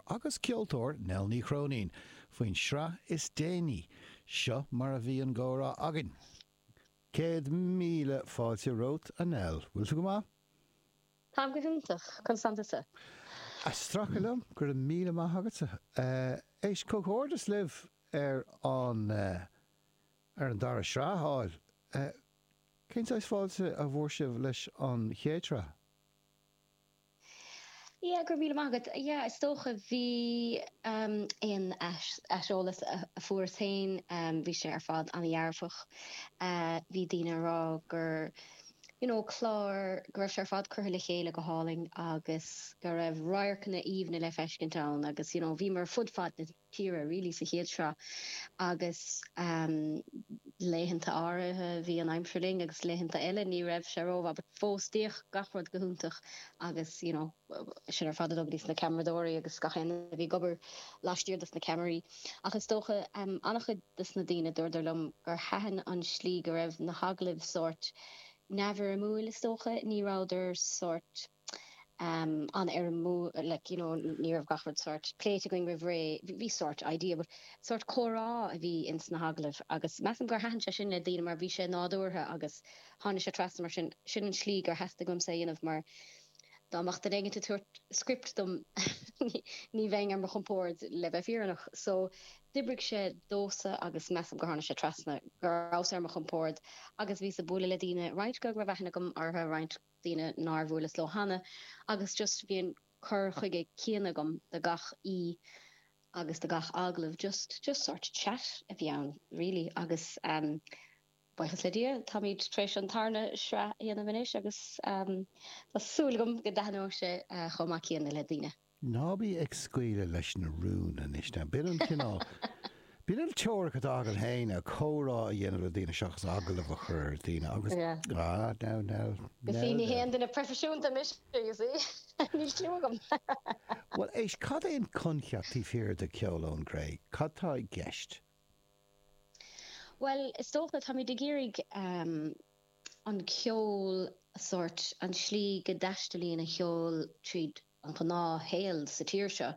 agus ceoltóir Nell Ní Chróinín faoin sraith is déanaí, seo mar a bhí an comhrá againn. Céad míle fáilte romhat, a Nell. Bhfuil tú go maith? Táim go hiontach. Conas atá tusa? Ag stracadh liom, go raibh míle maith agatsa. Éist, comhghairdeas libh ar an ar an dara sraith a fháil. Cén saghas fáilte a fuair sibh leis an chéad sraith? Yeah, go raibh míle maith agat. Yeah, is dócha bhí ehm, aon ais- aiseolas a a fuaireas féin, ehm, bhí sé ar fad an-dhearfach. Eh, bhí daoine ag rá gur you know clár, go raibh sé ar fad curtha le chéile go hálainn agus go raibh radharcanna aoibhne le feiscint ann agus you know bhíomar ar fud fad na tíre really sa chéad sraith agus laethanta áirithe bhí an aimsir linn agus laethanta eile ní raibh sé rómhaith but fós d'fhéach gach rud go hiontach agus you know sin ar fad ar, dar ndóigh, na ceamaradóirí agus gach éinne a bhí ag obair laistiar dos na ceamaraí ach is dócha an-chuid dos na daoine dúradar liom gur thaitin an tslí go raibh na hagallaimh sórt neamhfhoirmiúil is dócha ní rabhadar sórt an-fhoirmiúil like you know ní raibh gach rud sórt pléite againn roimh ré bhí sórt idea but sórt comhrá a bhí ins na hagallaimh agus measaim gur thaitin sé sin le daoine mar bhí sé nádúrtha agus tháinig sé trasna mar sin sin an tslí gur theastaigh uaimse a dhéanamh mar dá mbeadh duine éigin ag tabhairt script dom ní bheinn ar mo chompord le bheith fírinneach so d'oibrigh sé domhsa agus measaim gur tháinig sé trasna go rabhas ar mo chompord agus bhíos ag bualadh le daoine roinnt go raibh aithne agam orthu roinnt daoine nár bhuaileas leo cheana agus just bhí an cur chuige céanna agam do gach aoi agus do gach agallamh just just sórt chat a bhí ann really agus ehm buíochas le Dia táimid tar éis an tarna sraith a dhéanamh anois agus ehm tá súil agam go dtaitneoidh sé chomh maith céanna le daoine. Ná bí ag scaoileadh leis na rúin anois now. B'in an cineál, b'in an teoiric atá agam fhéin a, comhrá a dhéanamh le daoine seachas agallamh a chur ar dhaoine agus, ah, now, now, now then. Ní haon duine proifisiúnta mise you see, níl clue agam. Bhuel éist, cad é an coincheap taobh thiar de Ceol ón gCré? Cad tá i gceist? Bhuel is dócha, táimid ag iarraidh an ceol, sórt, an tslí go dtaistealaíonn an ceol tríd an ghnáthshaol sa tír seo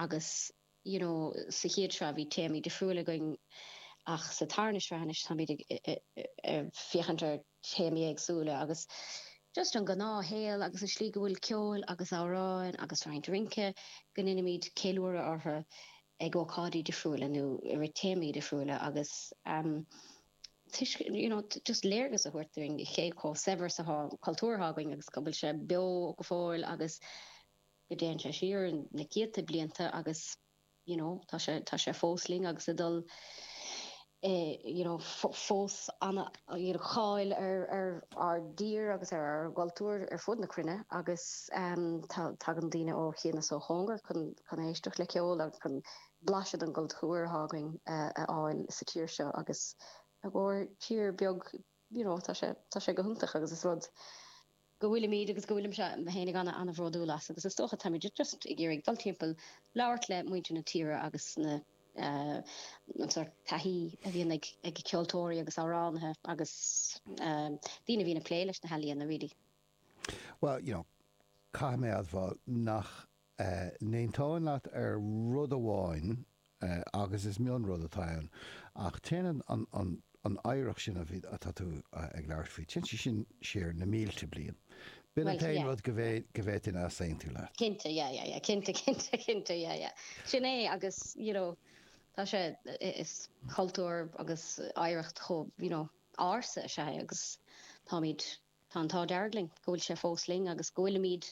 agus you know sa chéad sraith bhí téamaí difriúil againn ach sa tarna sraith anois táimid ag féachaint ar théamaí éagsúla agus just an gnáthshaol agus an tslí go bhfuil ceol agus amhráin agus roinnt rince go ndeinimid ceiliúradh orthu ag ócáidí difriúla nó i rith téamaí difriúla agus. tuiscint, you know just léargas a thabhairt dúinn cé chomh saibhir is atá an cultúr atá againn agus go bhfuil sé beo go fóill agus go dtéann sé siar na céadta blianta agus you know tá sé tá sé fós linn agus ag dul eh, you know, fós ana-cháil ar, ar ár dtír agus ar ár gcultúr ar fud na cruinne agus em, tá, tagann daoine ó chian is ó chóngar chun, chun éisteacht le ceol agus chun blaiseadh den gcultúr atá againn a fháil sa tír seo agus ár dtír beag you know tá sé tá sé go hiontach agus is rud go bhfuilimid agus go bhfuilimse fhéinig ana ana bhródúil as agus is dócha táimid just ag iarraidh dul timpeall labhairt le muintir na tíre agus na an sort taithí a bhíonn ag ag ceoltóirí agus amhránaithe agus daoine a bhíonn ag plé leis na healaíona really. Bhuel you know caithfidh mé admháil nach n-aontóinn leat ar rud amháin agus is mion rud atá ann ach téann an oidhreacht sin a bhí atá tú ag labhairt faoi, téann sí sin siar na mílte bliain. B'in an t-aon rud go bhféadfainn easaontú leat. Cinnte, yeah, yeah, yeah, cinnte, cinnte, cinnte, yeah, yeah. Sin é agus you know tá sé, is cultúr agus oidhreacht chomh you know ársa is atá sé agus táimid, Tá an t-ádh dearg linn go bhfuil sé fós linn agus go bhfuilimid,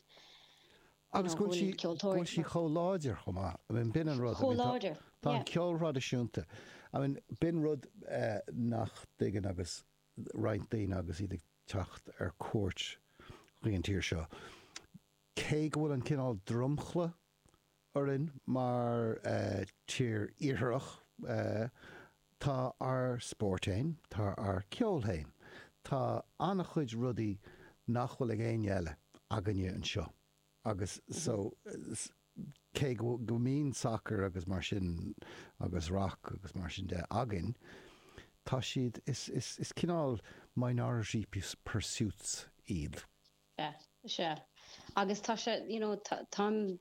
you know, go bhfuil ceoltóirí ag seinm. Chomh láidir chomh maith. I mean b'in an rud. Chomh láidir. Tá an ceol thraidisiúnta. I mean b'in rud nach dtuigeann agus roinnt daoine agus iad ag teacht ar cuairt don tír seo. Cé go bhfuil an cineál dromchla orainn mar tír iartharach. Tá ár spóirt fhéin, tá ár ceol fhéin, tá an-chuid rudaí nach bhfuil ag éinne eile againne anseo agus so cé go mbíonn sacar agus mar sin agus rac agus mar sin de againn tá siad, is cineál minority pursuits iad. Sea. Sea. Agus tá sé, you know, táim.